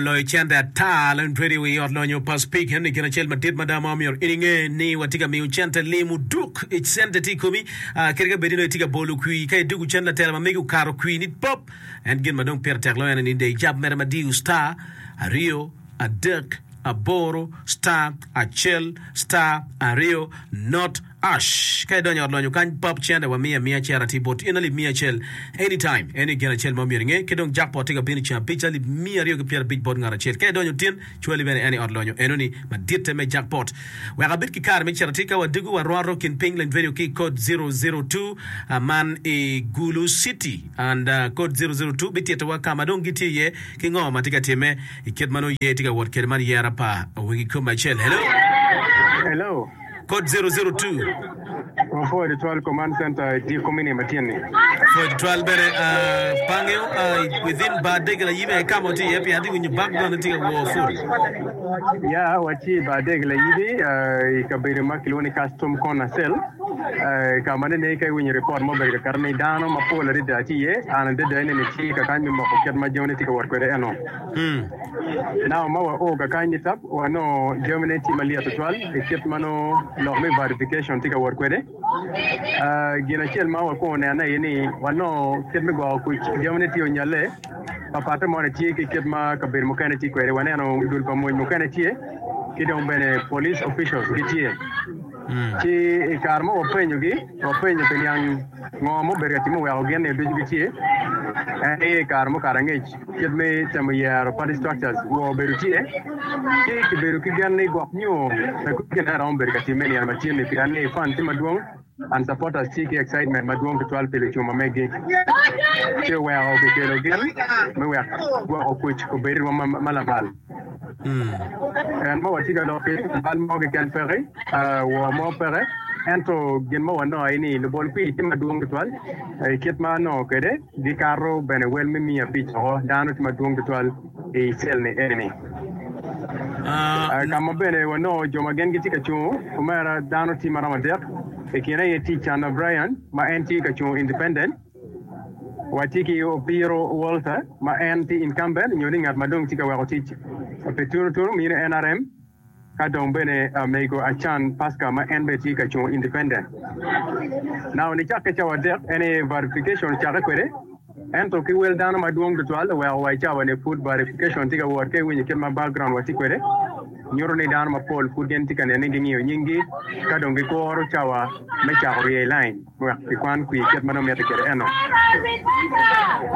loyo cente ata leng tweri i wi Ot Lonyo pa Spika. Enni gin acel madit mada ma omyero in inge ni watye ka miyo cente lim oduk i cente tye i komi kadi ka bed ni dong itye ka bolo kwir. Ka idwogo cen latela ma megi okato kwir ni pop en gin ma dong pire tek loyo en eni dei jab mere ma diyo star aryo adek aboro star acel star aryo not. Ash, Ka idonyo i ot lonyo kany bab cente wa miya miya cera tye bot in alip miya acel any time eni gin acel ma myero inge ki dong jackpot tye ka bino ceng abic alip miya aryo ki pyera abic bot ngat acel ka idonyo tin cwali bene en i ot lonyo eno ni maditte me jackpot wek abed ki kare me cera tye ka wa dugu wa rwato kin ping lany radio ki code 002 a man i gulu city and code 002 bitito wa kama dong gitye iye ki ngo matye ka time ikit manongo yer tye ka wot kede man yera pa wegi kome acel hello. Hello. Code 002. Mapol i twal command center i dyeko me niye matyen ni. Code twal bene uh, pange uh, within bar degela yibe e kama otye iye pien atye winyo bag bene tye ka wor full. Ya, watye i bar degela yibe uh, i kabedo ma kilwongo ni custom corner cell uh, i kama nene ka iwinyo report ma obedo kakato ni dano mapol adada tye iye, an adada nene tye kakany me moko kit ma jone tye ka wot kwede eno. Naka ma wao ka kany ni tab, wanongo jami ne tye malyet tutwal i kit ma nongo lok me verification tye ka wot kwede. Gin acel ma wakwongo neno aye ni wanongo kit me gwoko kuc jami ne tye onyalle, papatte mo ne tye ki kit ma kabedo mukene tye kwede. Waneno dul pa mony mukene tye ki dong bene police officials gitye. Ci i kare ma wapenyogi, wapenyo pi niang ngo ma obedo ka timme oweko gin ni ducu gice. En aye i kare mukato angec kit me temo yero party structures wo obedo tye, ci kibedo ki gen ni gwok nyo pe kop gin aye romo bedo ka timme i nino ma tye ni pien ni fan tye madwong and supporters tye ki excitement madwong tutwal pi lucuma megi. Ci oweko kikelo gin me wek gwok okuc obed rwom ma lamal. En ma watye ka lok ki bal mo keken peke, wor mo peke, ento gin ma wanongo aye ni lubol kwir tye madwong tutwal. I kit ma anongo kwede, gikato bene wel me miya abic woko. Dano tye madwong tutwal i cel-li eni. Ka ma bene wanongo jo ma gin gitye ka cung kumeno, dano tye maromo adek. I kine aye tye Chandler Bryan ma en tye ka cung independent. Wacci ki Opiro Walter ma en tye incumbent nyo ni ngat ma dong tye ka weko tic pi tunu tunu mi nrm ka dong bene mego Achan Pascal ma en bene tye ka cungo independent. Nawa nicakke cawa adek en aye verification ocakke kwede ento ki wel dano madwong tutwal oweko wa i cawa ni pud verification tye ka wot ka iwinyo kit ma background watye kwede nyuto ni dano mapol pud gin tye ka nene ni gingiyo nying gi ka dong gikuro cawa me cako rye i line. wek kikwan kwir kit ma dong mitte kwede eno.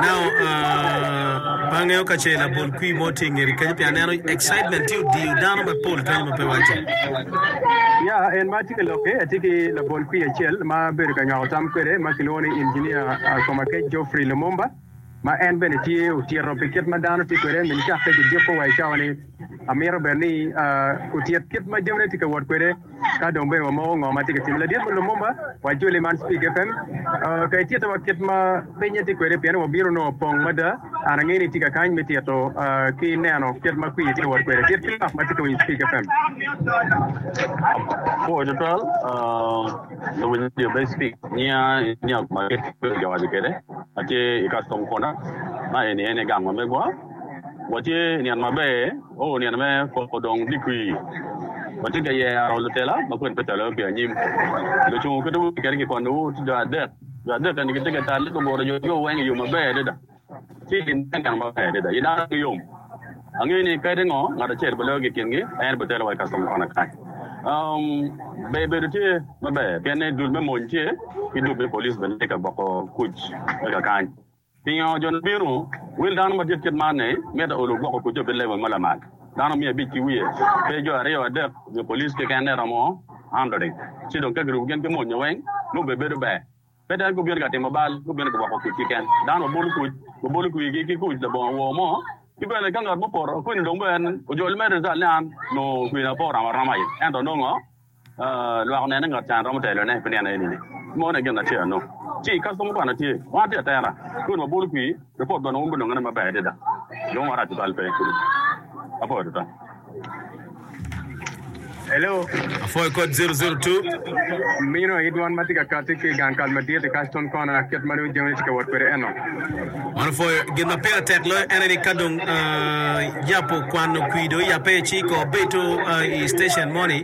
Now, uh, pe angeyo ka ce labol kwir mo tye i ngeti kenyo, pien aneno excitement tye odiyo dano mapol kenyo ma pe wacce. Ya, en ma tye ka lokke atye ki labol kwir acel ma abedo ka nywako tam kwede ma kilwongo ni Engineer uh, Komakec Geoffrey Lumumba. ma en bene tye otyero pi kit ma dano tye kwede, min cakke ki juko wa i cawa ni amito bene ni otyet kit ma jamine tye ka wot kwede ka dong bene wa moko ngo ma tye ka time. Ladit me Lumumba wa joli man Speak FM ka ityeta wa kit ma pinye tye kwede pien wa bino nongo pong mada and angeyo ni itye ka kany me tyto ki neno kit ma kwir tye ka wot kwede. Dit ki lok ma tye ka winyo Speak FM. Apuo tutwal. Luwinyo me Sphinx nia i nyag ma kibedo ka waco kwede ma tye i Custom Corner. Ma eni en aye gang ma megwa. Watye i nino maber, oo, nino me poko dong digwi. Watye ka yero lutela ma kwedgi ocwalowa pi anyim. Lucungu kit ma wutye kwede kikwannowu tye jo adek. Jo adek eni gitye ka talle guguro yotgigo weng i yo maber adada. Ci gin te neno maber adada i dano ki yom. Angeyo ni kadi ngo ngat acel boloyo ki i kingi, en botelo wa i kacomo kona kany. Um, ber bedo tye maber pien ni dul me mony tye, ki dul me police bene tye ka gwoko kuc me kakany. Pingo jo ni bino? Wel dano madit kit man ni mito olo gwoko kucce pi level ma lamal. Dano miya abic ki wiye, pe jo aryo adek nyo police keken-ne romo hundreding. Ci dong ka kirubo gin ki monye weng, nongo bene bedo ber. Pe dong gubino ka timo bal, gubino gwoko kuc keken. Dano ma bolo kuc, gubolo kwirgi ki kuc labongo wor mo. Ki bene, ka ngat mo opoto kwiri dong bene en ojol mere nital ni an onongo kwirina pe oromo aroma aye, ento nongo lwak onene ni ngat can romo telone pi nino enini, meno aye gin acel. Ci, ka somo kwano tye, wan atye atera, kwiri wabolo kwir. Lupot man wumbe longene maber adada, lwongo marac tutwal pe. Apwoyo tutwal. Hello. Apwoyo kod 002. Mino aye dwan ma tye ka kati ki i gang kal madit-ti, Cashton Corner, kit ma dong jami-ni tye ka wot kwede eno. Man opwoyo. Gin ma pire tek loyo en aye ni ka dong yap okwano kwidi, oyape ci ka obedo i station moni,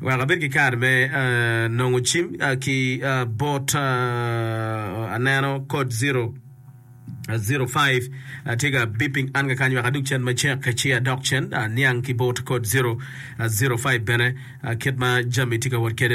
Wek abed ki kare me nongo cim ki bot aneno code zero zero five tye ka beeping an kakany wek adug cen macek ci adok cen aniang ki bot code zero zero five bene kit ma jami tye ka wot kwede.